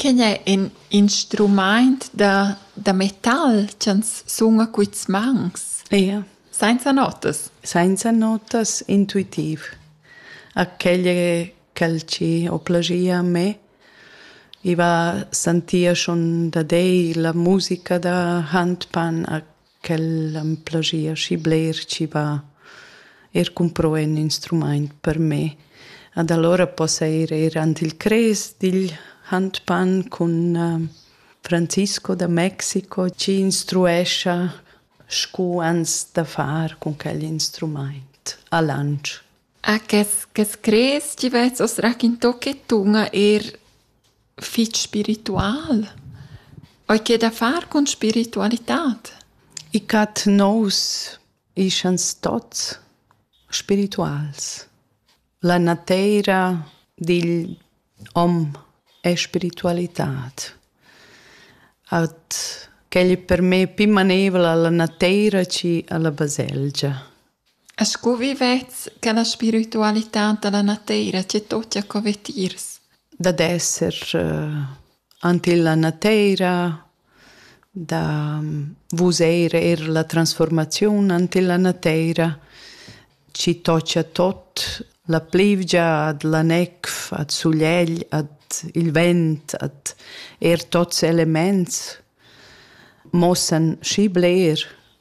Quegn è ün instrumaint da da metal ch'ans suna quists mans. Ia. Sainza notas? Sainza notas, intuitiv. A quel ch'el ci ho plaschia a me. I va sentir schon da dei la musica da handpan a Quel am plagia schi bler chi va eir cumpro ün instrumaint per me. Ad alura possa ir eir ant il Crest digl Handpan cun Francisco da Mexico chi instruescha scu ans da far cun quel instrumaint a Lantsch. Ah, che, che screz chi vezz as raquinto che tun eir fich spiritual? Ho i che da far cun spiritualitad? I cat nous ischans tots spirituals. La nateira digl hom è spiritualitad. At quel è per me pi maneivel alla nateira che alla baselgia. Scu vivets cha la spiritualità da la nateira che toccha co vetiers? Dad esser ant illa nateira, da vuseir eir la transfuormaziun ant illa nateira chi toccha tot, la plivgia ad la nef, ad sulegl, ad il vent, ad eir tots elemaints mossan schi bler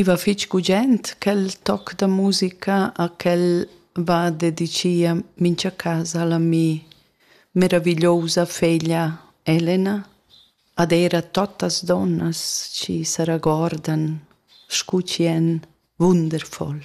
I va fich gugent quel toc da musica a quel va dedichia mincha casa a l'ami meravigliousa feglia Elena ad eir a tuottas donnas chi s'arragordan scu chi en wundervoll.